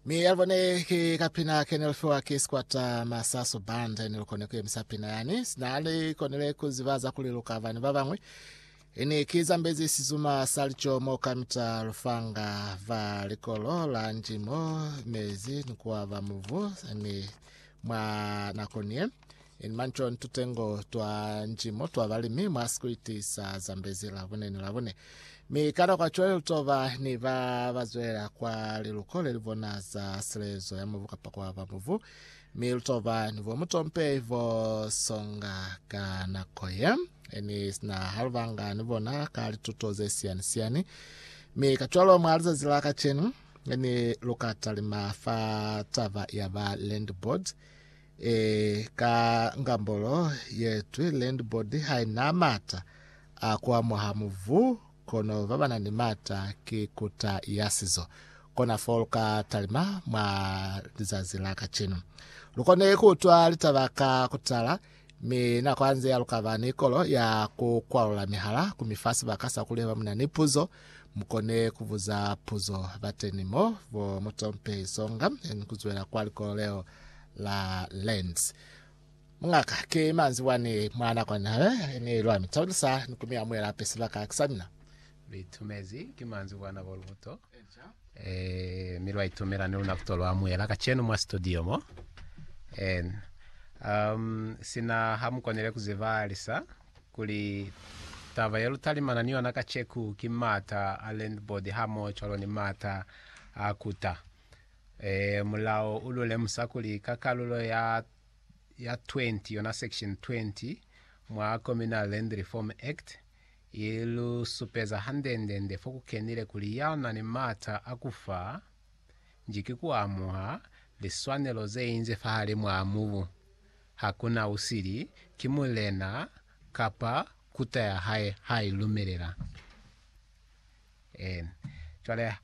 Mi ya bone ki kapina kene lufiwa ki squatter masasu band ene lukone kuyemisa pina yani sinali konele kuzibaza kuli lukava ni babangwe ini ki zambezi sizuma salicho mo kamita lufanga va likolo la njimo mezi nikuwa va muvu ni mwa nakoniye In Manchon tutengo twa njimo twa balimi mwa sikwiti sa Zambezi Labone ni Labone. Mi ka nakwa cwale lutoba ni ba bazwelela kwa liluko lelibona za silezo ya mubu kapa kwa ba mubu. Mi lutoba ni bo mutompe bo songa ka nako ye. Ni sina halubanga ni bona ka lituto ze siani siani. Mi ka cwalo mwa lizazi la kacenu ni luka talima fa taba ya ba land board. Ee, ka ngambolo ye twi, landbody haina mata a ku amuha muvu, kono babana ni mata ki kuta ya sizo. Kona fo lu ka talima mwa lizazi la kacenu. Lu kone ku utwa litaba ka kutala, mi na kwanzea lu ka ba ni kolo ya ku kwalula mihala ku mi fa sibaka sa ku leba mu na ni puzo Mukone kubuza puzo bateni mo, bo Mutompe Isonga, yani kuzwela kwa likolo leo la Lens. Mungaka, ki manzi wani mwa nakwani hale, yani lwa mitaulisa ni kumiamuela ape sibaka kisa mina. Litumezi ki manzi wa nako lubuto, eh, mi lwa itumela ni luna kuto lwamuela kacenu mwa studio mo. En, um, sina ha mukonele kuziba lisa. kuli taba yelutalimana ni yona kaceku ki maata a landboard hamoho cwalo ni maata a kuta. Ee, mulao u lu lemusa kuli ka kalulo ya ya 20 yona section 20 mwa Communal Land Reform Act, i lu supeza hande-nde-nde fo ku kenile kuli ya na ni maata a ku fa nji ki ku amuha liswanelo ze inze fahalimwaa mubu hakuna usili ki mulena kapa kuta ya hae ha i lumelela. En. Cwale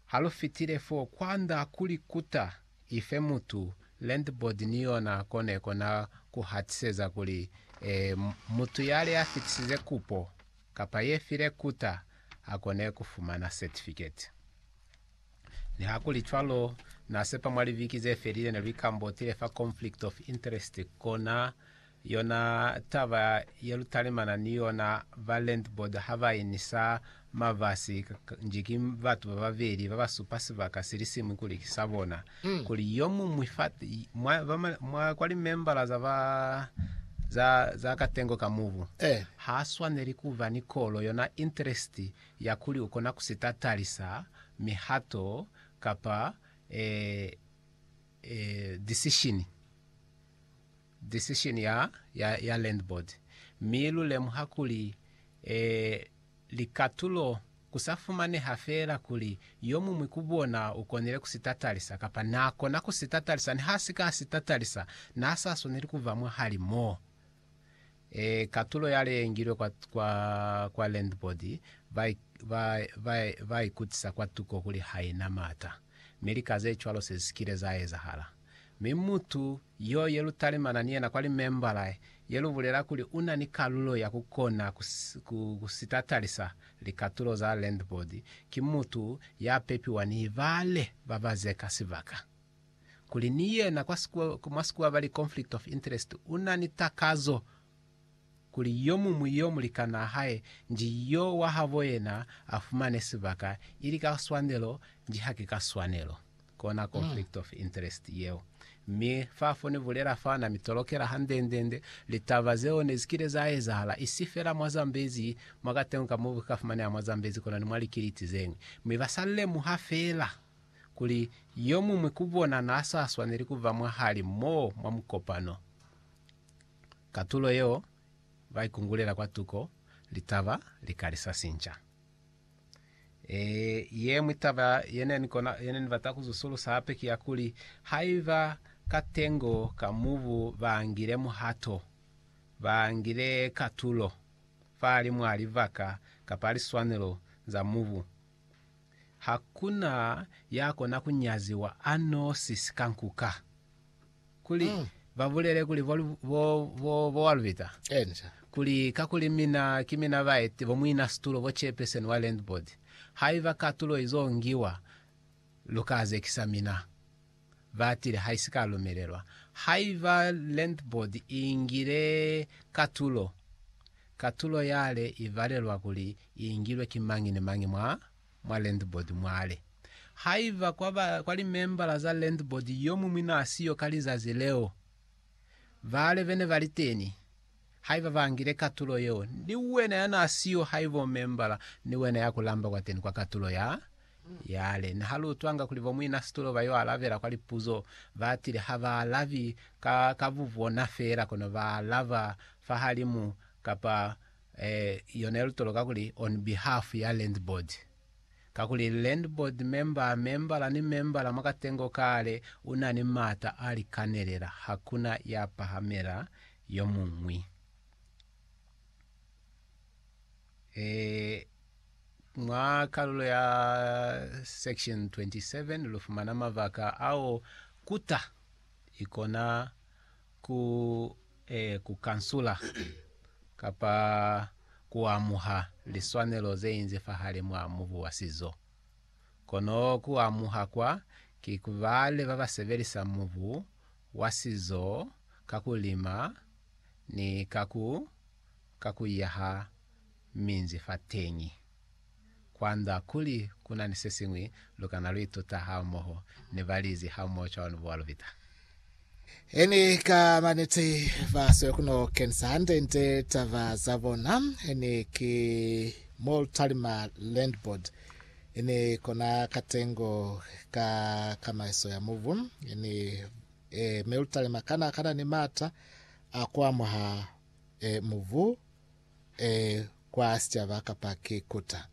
ha lu fitile fo, kwanda kuli kuta ife mutu, landboard ni yona ko ne kona ku hatiseza kuli, E, mutu yale ya fitisize kupo kapa ye file kuta, a kone ku fumana certificate. Nihakulicwalo, na sepa mwa liviki ze felile ne lu ikambotile fa conflict of interest, kona yona taba ye lu talimana ni yona ba landboard ha ba inisa mabasi nji ki batu ba babeli ba ba supa sibaka si li siñwi kuli ki sa bona, kuli yo muñwi fa mwa, mwa kwa limembala za ba za, za katengo ka mubu ha swaneli ku ba ni kolo yona interest ya kuli u kona ku si tatalisa mihato kapa e, e, disishini, disishini ya, ya, ya land board, mi lu lemuha kuli, e, likatulo ku sa fumaneha fela kuli yo muñwi ku bona u konile ku si tatalisa kapa na kona ku si tatalisa. Niha a si ka a si tatalisa, na sa swaneli ku ba mwahali mo. Ee, katulo ya leengilwe kwa, kwa, kwa landboard, ba, ba, ba, ba ikutisa kwa tuko kuli haina maata. Mi lika ze cwalo se sikile za ezahala. Mi mutu yo ye lu talimana ni yena kwa limembala, ye lu bulela kuli una ni kalulo ya ku kona ku, ku, ku sitatalisa likatulo za landboard, ki mutu ya pepiwa ni ibale ba ba zeka sibaka. kuli ni yena kwa sikuwa, mwa sikuwa bali conflict of interest, una ni takazo kuli yo mumwi yo mulikanaa hae nji yo wa habo yena a fumane sibaka ili ka swanelo nji haki ka swanelo. Kona conflict of interest yeo. Mi fa fo ni bulela fa na mi tolokela handendende litaba zeo ne zikile za ezahala, isi fela mwa Zambezi, mwa katengo ka mubu ka fumaneha mwa Zambezi kono ni mwa likiliti zeñwi. Mi ba sa lemuha fela. kuli yo muñwi ku bona n'a sa swaneli ku ba mwahali m'o mwa mukopano. Katulo yeo ba ikungulela kwa tuko litaba li ka li sa sinca. Ee, ye ñwi taba ye ne ni kona, ye ne ni bata ku zusulusa hape ki ya kuli, haiba ka tengo ka mubu ba ngile muhato, ba ngile katulo fahalimw'a libaka kapa liswanelo za mubu, Ha ku na ya kona ku nyaziwa a nosi sika nkuka. Kuli ba bulele kuli bo, bo, bo, bo wa lubita. Enca. Kuli, kakuli mina, ki mina ba ete, bo muina situlo, bo chairperson wa land board. Haiba katulo izo ngiwa, lu ka zekisa mina. batile haisika lumelelwa. Haiba Land Board iingile katulo, katulo yale ibalelwa kuli iingilwe ki mañi ni mañi mwa mwa Land Board mwale. Haiba kwa ba kwa limembala za Land Board yomuñwi naasiyo ka lizazi leo, bale bene baliteni, Haiba bangile katulo yeo, ni wena ya na siyo haiba u membala, ni wena ya ku lamba kwateni kwa katulo ya yale. Ne ha lu utwanga kuli bo muina situlo ba yo alabela kwa lipuzo, ba tile ha ba alabi ka, ka bubona feela, kono ba alaba fahalimu kapa eh, yona ye lu toloka kuli on behalf ya landboard. Kakuli landboard member, membala ni membala mwa katengo kale una ni maata a likanelela, hakuna ya pahamela yomuñwi. E, mwa kalulo ya section 27 lufumana mabaka ao kuta ikona ku, e, ku kansula kapa kuamuha liswanelo zeinzi fahali mwa mubu wa sizo. Kono kuamuha kwa ki kubale babasebelisa mubu wa sizo ka ku lima ni ka ku ka ku yaha minzi fateñi. Kwa nda kuli ku na ni se siñwi lu kana lu ituta hamoho ni balizi hamoho cwalo ni buwa lu bita. He ni ka maneti ba siyo ku no kenisa hande nde taba za bona. He ni ki mo lu talima Landboard I ni kona katengo ka kamaiso ya mubu, i ni e, melutalema kana kana ni maata a kuamuha e, mubu e, kwa sicaba kapa ki kuta.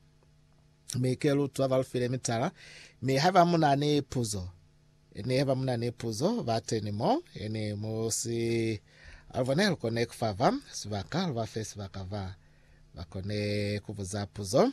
Mi ke lutwa balufile mitala, mi haiba muna ni puzo, ni haiba muna ni puzo, bateni mo, ni musi alubone lukone kufava sibaka, lubafe sibaka va bakone kubuza puzo.